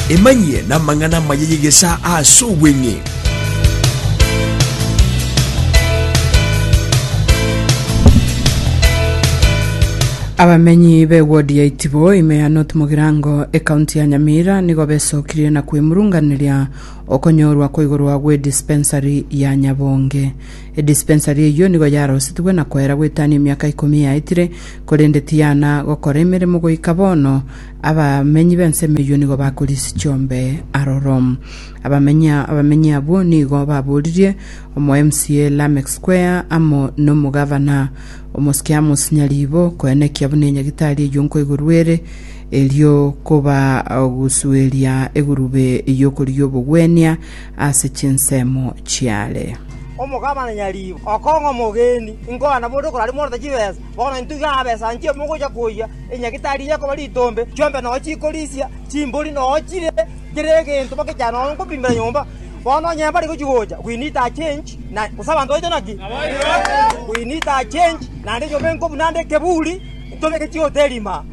emanyie namang'ana amaya y'egesa ase obweng'e Abamenyi b'ewodi ya Itibo ime ya North Mugirango ekaunti ya Nyamira nigo besokirie na kwemurunganeria okonyorwa kwa igoro gwe dispensary ya Nyabonge. Edispensari eyio nigo yarosetigwe na koera gwetania emiaka ikomi yaetire, korende tiyana gokora emeremo goika bono. Abamenyi b'ensemo eyio nigo bakorisia chiombe aroro. Abamenyi abamenyi abwo nigo baboririe omo MCA Lameck Square amo nomogavana omosike Amos Nyariibo koenekia buna enyagitari eyio nkoigorwa ere, erio kobagusueria egurube y'okorigia obogwenia ase chinsemo chiare. Omogabana nyariibo, okong'a omogeni, inkoana bonde okoraria morente chibesa, bono intwe iga abesanchia omogocha koyia enyagitari eye ekoba ritombe, chiombe nao chikorisia, chimbori nao chire kera egento bagechana nao nkobimbera nyomba. Bono onye mbare gochia gocha, we need a change, na gose abanto baito naki? We need a change, naende nyomba enkobuna ande ekeburi, ntobeke chihoteli ime aa.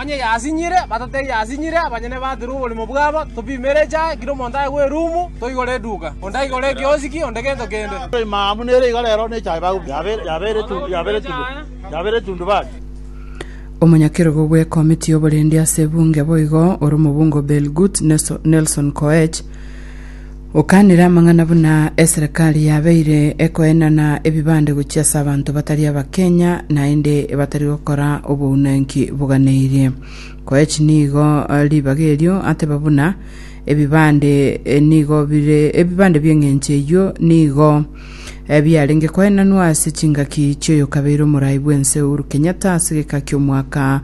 Onye yasinyire, batotebie yasinyire, abanyene batire oborimo bwabo, topimere echae, kera omonto aye bw'erumu, toigore eduka, onde aigore ekiosiki, onde gento kende. Omonyakerogo bw'ekomiti y'oborendi ase ebunge boigo ore omobungo Belgut Nelson Koech, Okanire amang'ana buna eserekari yabeire ekoenana ebibande gochia ase abanto batari Abakenya naende batari gokora obounanki boganeirie. Koech nigo ribaga erio ateba buna ebibande nigo bire ebibande bi'eng'encho eyio nigo biarenge koenanwa ase chingaki chioyokabeire omorai bw'ense Uhuru Kenyatta ase geka ki'omwaka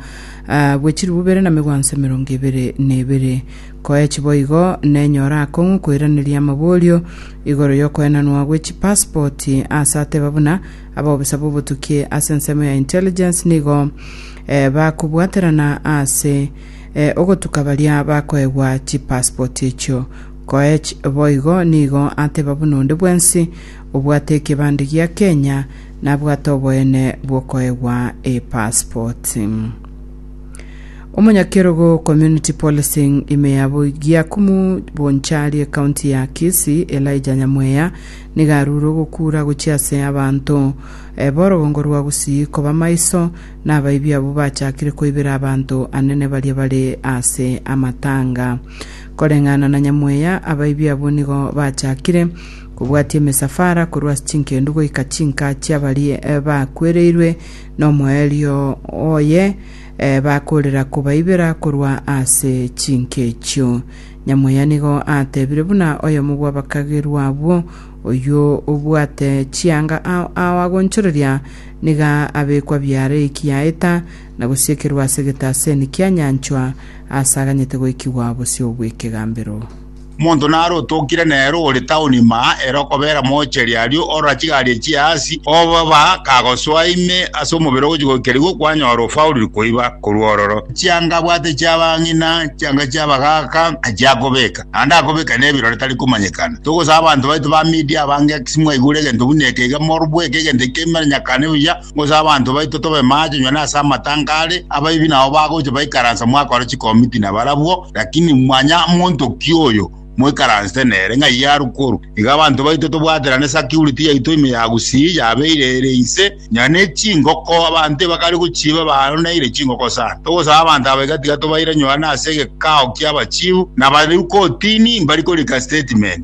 bwe chilifu bibere na megwanso emerongo ebere na ebere. Koech boigo, nenyore akong'u koiraneria amaborio igoro y'okoenanwa gwe chipaspoti ase ateba buna abobisa b'obotuki ase ensemo ya intelligence nigo eh, bakobwaterana ase eh, ogotuka baria bakoegwa chipaspoti echio. Koech boigo nigo ateba buna onde bwensi obwate ekebande gia Kenya nabwate oboene bw'okoegwa epaspoti. Omonyakerogo Community Policing ime ya Giakumu Bonchari ekaunti ya Kisii Elijah Nyamweya nigo arure ogokura gochia ase abanto eh, borogongo rwa Gusii koba maiso na abaibi abwo bachakire koibera abanto anene baria bare ase amatanga. Koreng'ana na Nyamweya, abaibi abwo nigo bachakire kobwatia emisafara korwa ase chinkendu goika chinka chiabaria eh, bakwereirwe nomoerio oye bakorera kobaibera korwa ase chinka echio. Nyamoya nigo atebire buna oyomo bw'abakagerwa abwo, Oyio obwate chianga ao ao agonchoreria, niga abekwa biaare eki yaeta, na gosiekerwa ase egetaseni kianyanchwa, aase aganyete goikigwa bosio bw'ekegambero. Omonto nare otokire nere ore town ime aa ere okobera moocheri aria orora chigari echio aase obo ba kagosoa ime ase omobere ogochia goikerigwa kwanyora ofaulire koiba korwa ororo chianga abwate chiabang'ina chianga chiabagaaka achia akobeka naende akobeka nebirore tari komanyekana togosaba abanto baito ba media abange ase mwaigure egento buna eke iga morobweke egento ekio kemanyakane buya gose abanto baito tobe maache onye na ase amatango are, abaibi nabo bagocha baikaransa mwakora chikomiti nabarabwo, lakini manya monto ki oyo moikaransete nere ng'a iye arwe korwa iga abanto baito tobwaterane security yaito ime ya gusii yabeire ere inse onye ne chingoko abanto ebakare gochiba baroneire chingoko sana togosaba abanto aba iga tiga tobaire nyora nase egekao kiaba chief nabareu kotini mbari korika statement.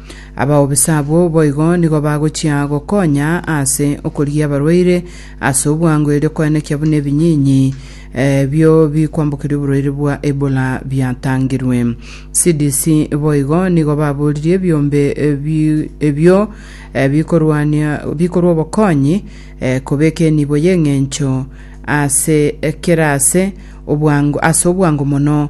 Abaubisa abwo boigo nigo bagochia gokonya ase okorigia abarwaire ase obwango erio koenekia buna ebinyinyi eh, bio bikwambokeria oborwaire bwa Ebola biatangirwe. CDC boigo nigo baboririe ebiombe eh, bi- ebio eh, bikorwania bikorwa obokonyi eh, kobeka enibo y'eng'encho ase eh, kera ase obwango ase obwango mono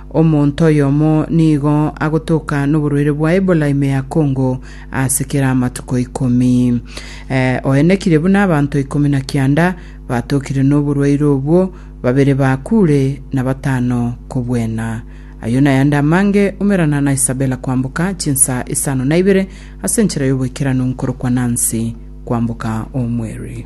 Omonto oyomo nigo agotoka noborwaire bwa Ebola ime ya Congo ase kera amatuko ikomi. Eh, oenekire buna abanto ikomi na kianda batokire noborwaire obwo, babere bakure na batano kobwena. Ayio nayande amange Omerana na Isabella kwamboka chinsa isano na ibere ase enchera y'oboikeranu nkorokwa Nancy kwamboka omweri.